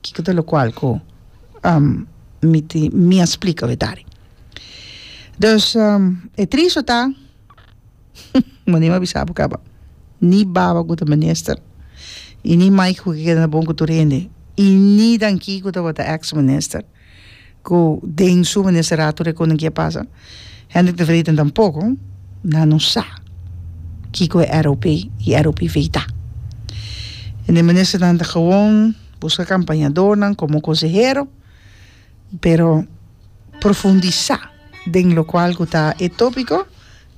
Kiko ta lokual ku mi tin mi a splika berdadi? Dus e tris ta, bo ni a bisa bo kaba, ni baba ku ta minister i ni Mike ku a keda na bon ku tur hende i ni Dan Kiko tabata ex minister. Ku den su ministeratu de koning ke a pasa. Hendrik de Vreeten tampoko nan no sa kiko e ROP i ROP Vei ta. En e ministernan ta gewoon buska kampañadornan komo konsehero, pero profundisá den lokual ku ta e tópiko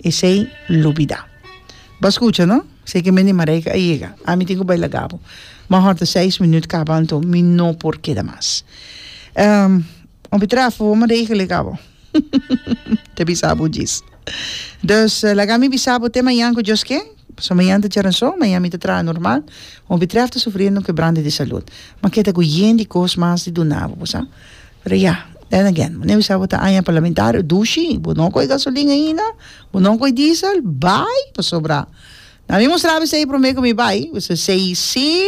esei lubidá. Bo scucha no, si ke mende Marijke a yega, ami tin ku bai laga bo. Bo hòrta seis minüt kaba anto mi no por keda mas. Hopi trafo bo Marijke lega bo. Ta bisa bo djis. Dus laga mi bisa bo te mañan ku Dios ken, paso mañan ta djaranso, mañan mi ta traha normal. Hopi traf ta sufriendo un kebrante di salud. Ma ke ta ku yen di kos mas di duna bo, bo sa. Pero ya, then again, mane bisa bo ta aña parlamentario, dushi, bo no koe gasolin ainda, bo no koe diesel, bai pasobra na mi mustra bisa ei prome ku mi bai, bisa sei si,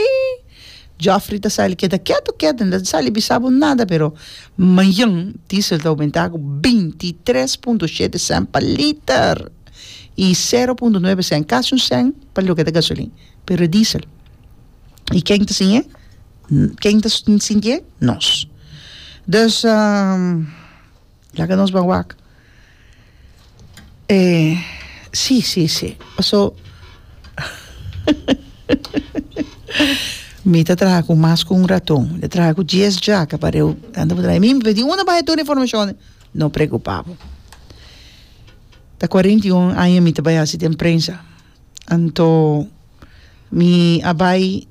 Jofrey ta sali keda ketu ketu, no ta sali bisa bo nada pero mañan diesel ta oumenta ku binti i tres punto shete sènt pa liter i sero punto nuebe sènt, kasi un sènt pa loke ta gasolin, pero e diesel. I ken ta siñ'e? Ken ta sintié? Nos. Dus laga nos ban wak. E si, si, si, paso mi ta traha ku mas ku un raton, mi ta traha ku dies djaka pa reu kanta bo ta traha. Mi mi di unda bai tur e informashon? No preokupa bo. Ta kuarenta i un aña mi ta bai hasi den prensa. Anto mi a bai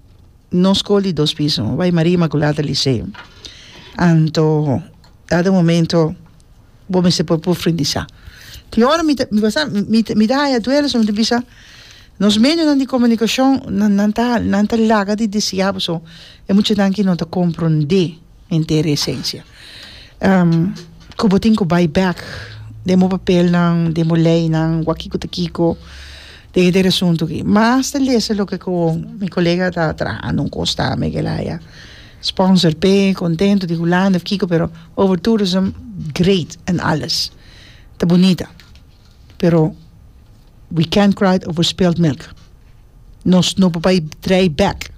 no skol di dos piso, mi a bai Maria Imakulada Liseo. Anto dado momento bo mester por pufrundisá. Tin ora mi ta mi basta mi mi ta haya duelo so mi ta bisa nos medionan di komunikashon nan nan ta nan ta laga di disiá boso e mucha nan ki no ta komprondé. Henter e esencia. Cu bo tin cu bay back den bo papelnan, den bo leynan, wak kico ta kico, den henter e asunto aki. Mas ta lesa loke cu mi colega ta trahando un cos ta me ke laya. Sponsor p'e, contento di Hulanda of kico, pero over tourism great en alles. Ta bunita. pero we can't cry over spilled milk nos no por bai draai back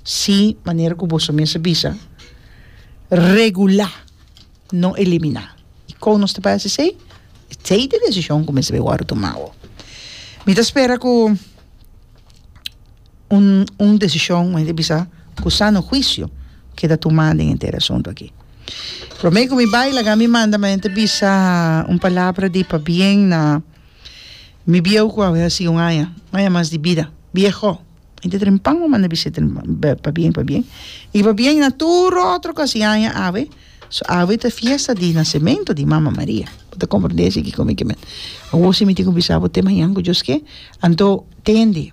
si manera ku boso mes a bisa regulá no eliminá i kon nos ta bai hasi esei e tei di desishon ku mester bai wòrdu tumá awo mi ta spera ku. Un un decision mester bisa cu sano juicio keda tuma den henter asunto aki. Prome cu mi bay laga mi manda mane ta bisa un palabra di pabien na mi bieuw cu awe haci un aña un aña mas di bida bieho mi ta dren pan mi manda bisit pabien pabien y pabien na tur otro cu haci aña awe so awe ta fiesta di nacemento di mama Maria bo ta comprende asi ki con mi kimen awor si mi tin cu bisa bo te mañan cu Dios ke anto tende.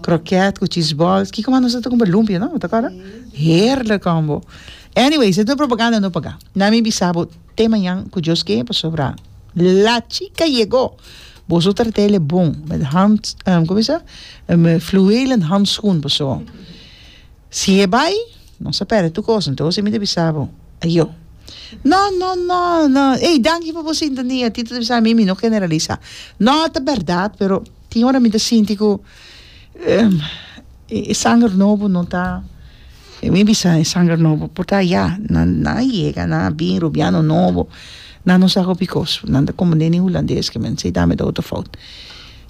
Croquet cu cheese balls. Kico mas nos a tabata cu lumpia no? Ta acorda? Heerlijk combo. Anyways, e ta un propaganda no paga. Na mi bisa bo te mañan cu Dios ke pasobra la chica yego. Boso trata el'e bon met hand como es e fluwelen handschoen paso si e bay nos a perde tur cos entonces mi ta bisa bo ayo no no no no ey danki pa bo sintonia Tito ta bisa mi mi no generalisa no ta berdad pero Tin ora mi ta sinti ku e sanger nobo no ta, mi bisa e sanger nobo por ta ya, nan nan a yega, nan a bin, rubiano nobo, nan no sa hopi kos, nan ta komo neni hulandes ke men, si ta mi ta otro fout.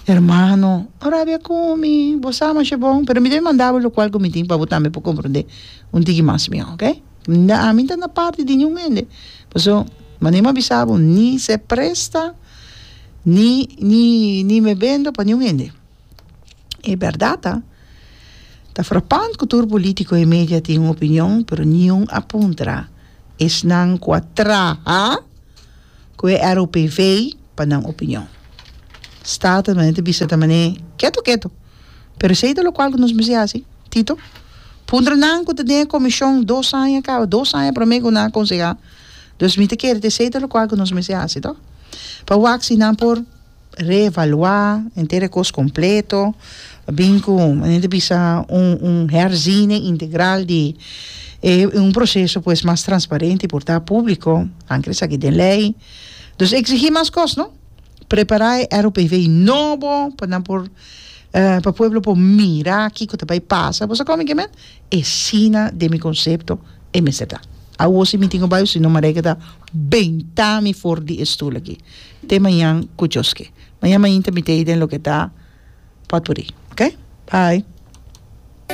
Hermano, ora a bia ku mi, bo sa masha bon, pero mi ta bin manda bo lokual ku mi tin pa bo tambe por komprende un tiki mas miau, oke? Ami ta na parti di niun hende, pasobra, manera mi a bisa bo, ni se presta ni ni ni me bendo pa niun hende e berdad ta ta frapant cu tur politico y media tin un opinion pero niun a puntra esnan cu a traha cu e ROPV pa nan opinion staten mane ta bisa tamane keto keto pero esey ta locual cu nos mester haci Tito puntra nan cu ta den e comision dos aña caba dos aña prome cu nan a conseha Dos mi ta kere ta esei ta locual cu nos mester haci to, pa wak si nan por reevalua henter e cos completo, bin cu men ta bisa un un herziening integral di e un proceso pues mas transparente y por ta publico, nan quiere saki den ley, dus exigi mas cos no, prepara e ROPV nobo pa nan por pa pueblo por mira kico ta bay pasa, bosa como kimen? E sina den mi concepto e mester ta. Awo si mi tin cu bai o si no Marijke ta benta mi for di e stoel aki. Te mañan cu Dios ke. Mañan mainta mi ta ey den loke ta potpourri. Ok. Bye.